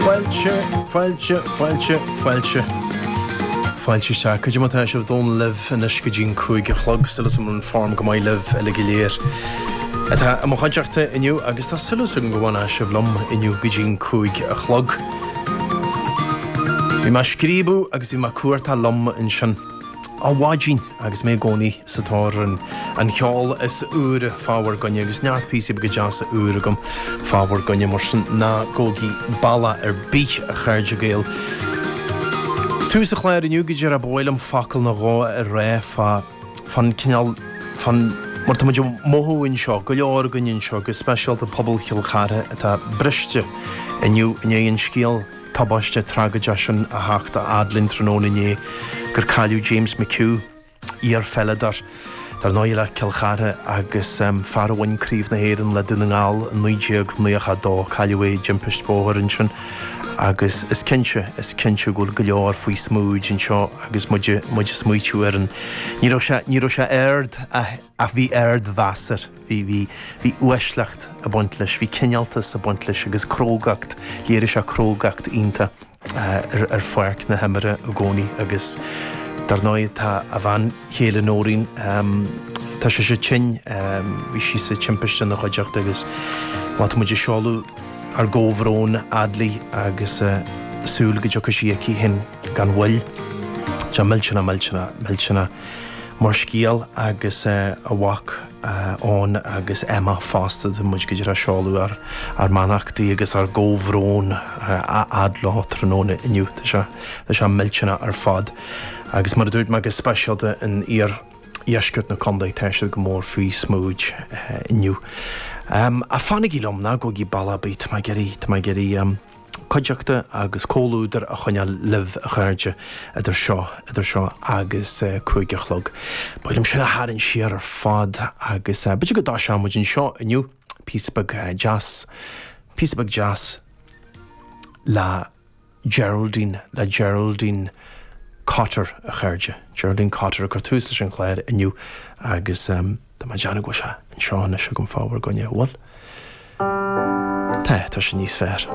Fáilte, fáilte, fáilte, fáilte. Fáilte isteach. Cad é mar atá sibh? Dónall libh anois go dtí'n cúig a chlog. Súil is agam go bhfuil form go maith libh uile go léir atá i mo chuideachta inniu agus tá súil is agam go bhfanfaidh sibh liom inniu go dtí'n cúig a chlog. Bhí mé ag scríobadh agus bhí mé ag cuartú liom ansin. Ó mhaidin agus mé i gcónaí sa tóir ar an cheol is úire fá bhur gcoinne agus neart píosaí beaga deasa úra agam fá bhur gcoinne mar sin ná gabhaigí bealach ar bith, a chairde Gael. Tús an chláir inniu go díreach ba mhaith liom focal nó dhó a rá fá fán cineál fán mar atá muid ag mothú anseo, go leor againn anseo, go speisialta pobal Chill Chartha atá briste inniu i ndiaidh an scéal. tubaisteach tragóideach sin a theacht a fhad linn tráthnóna inné gur cailleadh James McHugh, iar-pheileadóir, dar ndóigh, le Cill Chartha agus fear a bhain Craobh na hÉireann le Dún na nGall i 1992. Cailleadh é i dtimpist bhóthair ansin agus is cinnte, is cinnte go bhfuil go leor faoi smúid anseo agus muid ag smaoitiú ar an. Ní raibh sé, ní raibh sé ard ach bhí ardmheas air. Bhí, bhí, bhí uaisleacht ag baint leis, bhí cineáltas ag baint leis agus crógacht, léirigh sé crógacht iontach ar pháirc na himeartha i gcónaí agus dar ndóigh tá a bhean chéile Noreen, tá sise tinn, bhí sí sa timpiste ina chuideachta agus bhuel tá muid ag seoladh ár gcomhbhrón a fhad léi agus súil go dtiocfaidh sí aici féin gan mhoill. Tá millteanach, millteanach, millteanach. Mar scéal agus a mhac Eoin agus Emma fosta tá muid go díreach ag seoladh ár mbeannachtaí agus ár gcomhbhrón a fhad leo tráthnóna inniu. Tá sé, tá sé millteanach ar fad. Agus mar a dúirt mé go speisialta in iardheisceart na contae tá siad go mór faoi smúid inniu. Ach fanaigí liom, ná gabhaigí bealach ar bith, tá mé ag iarraidh, tá mé ag iarraidh. cuideachta agus comhluadar a choinneáil libh, a chairde, idir seo idir seo agus cúig a chlog. Ba mhaith liom sin a tharraingt siar ar fad agus b'fhéidir go dtoiseoidh muid anseo inniu píosa beag deas, píosa beag deas le Geraldine, le Geraldine Cotter, a chairde. Geraldine Cotter ag cur tús leis an chláir inniu agus. Tá mé ag déanamh go bhfuil sé anseo anois agam fá bhur gcoinne, an bhfuil? Tá, tá sé níos fearr.